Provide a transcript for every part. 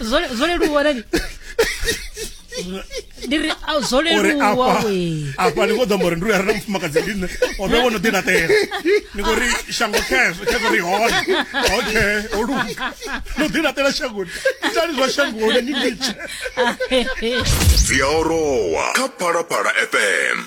zwo zwo leluwa nani ndi ri a, zwo uri leluwa afha we afha ni kho ḓo amba uri ndi uri arali mufumakadzi ndi nṋe o vhe wono ḓilaṱela ni khou ri shango cash cash ri hone okay o luga no ḓilaṱela shangoni itani zwa shangoni ni litshe dzi a orowa kha phalaphala fm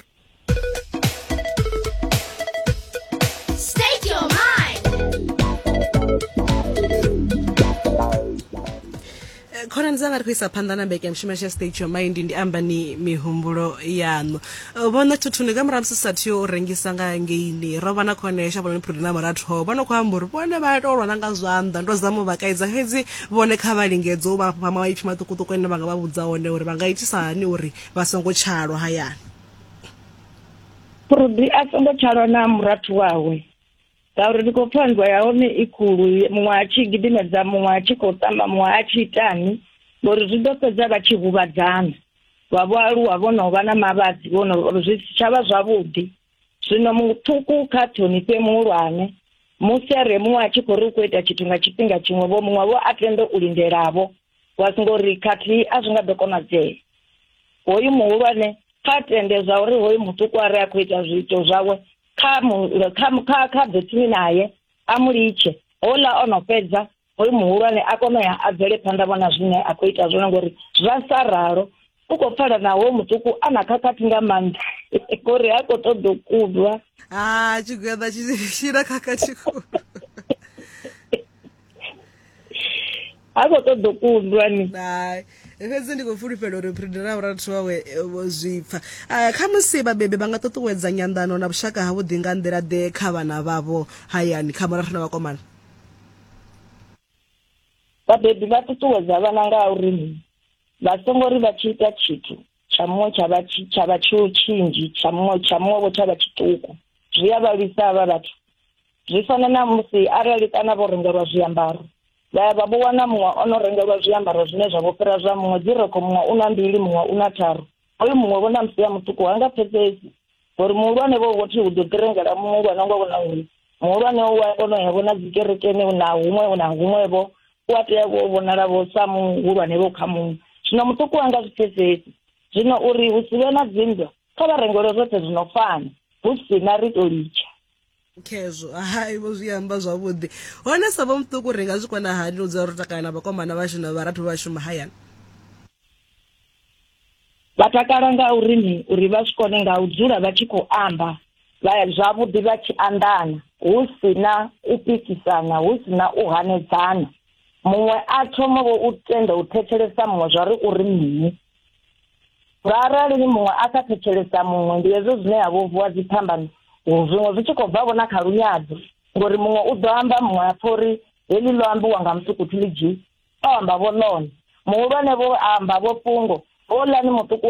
khonani dzanga ri khou isa phanḓa na mbekanyamushumo ya stage your mind ndi amba ni mihumbulo yaṋu vhona thuthuni ka murahu musi sathu yo u rengisa nga ngeini ro vha na khone ya shavhononi phuri na muratho vho no khou amba uri vhone vha tou lwana nga zwanḓa ndo zama u vha kaidza fhedzi vhone kha vha lingedze u vha fha maipfi maṱukuṱuku ane vha nga vha vhudza one uri vha nga itisa hani uri vha songo tshalwa hayani Purudi a songo tshalwa na murathu wawe ngauri ndi khou pfa nndwa ya hone i khulu muṅwe a tshi gidimedza muṅwe a tshi khou tamba muṅwe a tshi itani ngori zwi ḓo fhedza vha tshi huvhadzana vha vho aluwa vho no vha na mavhadzi vho no zwi si tsha vha zwavhuḓi zwino muṱuku kha ṱhonifhe muhulwane musi a re muṅwe a tshi khou ri u khou ita tshithu nga tshifhinga tshiṅwe vho muṅwe vho a tende u lindelavho wa singo ri khathihi a zwi nga ḓo konadzea hoyu muhulwane kha tende zwa uri hoyu muṱuku a re a khou ita zwiito zwawe kha kha kha ḓe tsini naye a mu litshe houḽa o no fhedza hoyu muhulwane a kone u ya a bvele phanḓa vhona zwine a khou ita zwone ngori zwa sa ralo u khou pfala naho muṱuku a na khakhathi nga maanḓa ngori ha khou ṱoḓa u kudwa ha tshigweḓa tshina khakhathi khulu ha khou ṱoḓa u kundwa ni fhedzi ndi khou fulufhela uri phiridi ra vhurathu wawe eh, vho zwipfa eh, kha musi vhabebi vha nga ṱuṱuwedza nyanḓano na vhushaka ha vhuḓi nga nḓila ḓe kha vhana vhavho hayani kha murathu na vhakomana vhabebi vha ṱuṱuwedza vhana nga uri vha songo ri vha tshi ita tshithu tsha muṅwe tsha vha tshi tsha vha tsho tshinzhi tsha muṅwe tsha muṅwe vho tsha vha tshiṱuku zwi a vha lwisa havha vhathu zwi fana na musi arali kana vho rengelwa zwiambaro vha ya vha vho wana muṅwe o no rengelwa zwiambaro zwine zwa vho fhira zwa muṅwe dzi rekho muṅwe u na mbili muṅwe u na tharu Oyo muṅwe vho na musia muṱuku ha nga pfesesi ngori muhulwane vho vho thi u ḓo ḓirengela muhulwane nga vhona uri muhulwane u a kona u ya vhona dzikerekeni na huṅwe na huṅwevho u a tea vho vhonala vho sa muhulwane vho kha muṅwe zwino muṱuku a nga zwi pfesesi zwino uri hu si vhe na dzinndwa kha vha rengelwe zwoṱhe zwi no fana hu si na ri tou litsha khezwo hai vho zwi amba zwavhuḓi hone sa vho muṱuku ri nga zwi kona hani u dzula ro takala na vhakomana vhashu na vharathu vhashu mahayani vha takala nga uri ni uri vha zwi kone nga u dzula vha tshi khou amba vha zwavhuḓi vha tshi anḓana hu si na u pikisana hu si na u hanedzana muṅwe a thoma vho u tenda u thetshelesa muṅwe zwa ri uri mini Nga arali ni muṅwe a sa thetshelesa muṅwe, ndi hezwo zwine ha vho vuwa dziphambano, zwiṅwe zwi tshi khou bva vho na kha lunyadzo, ngori muṅwe u ḓo amba muṅwe a pfa uri heḽi ḽo ambiwa nga musukuthi ḽi dzhii, o amba vho ḽone. Muhulwane vho amba vho fhungo, houḽani muṱuku wa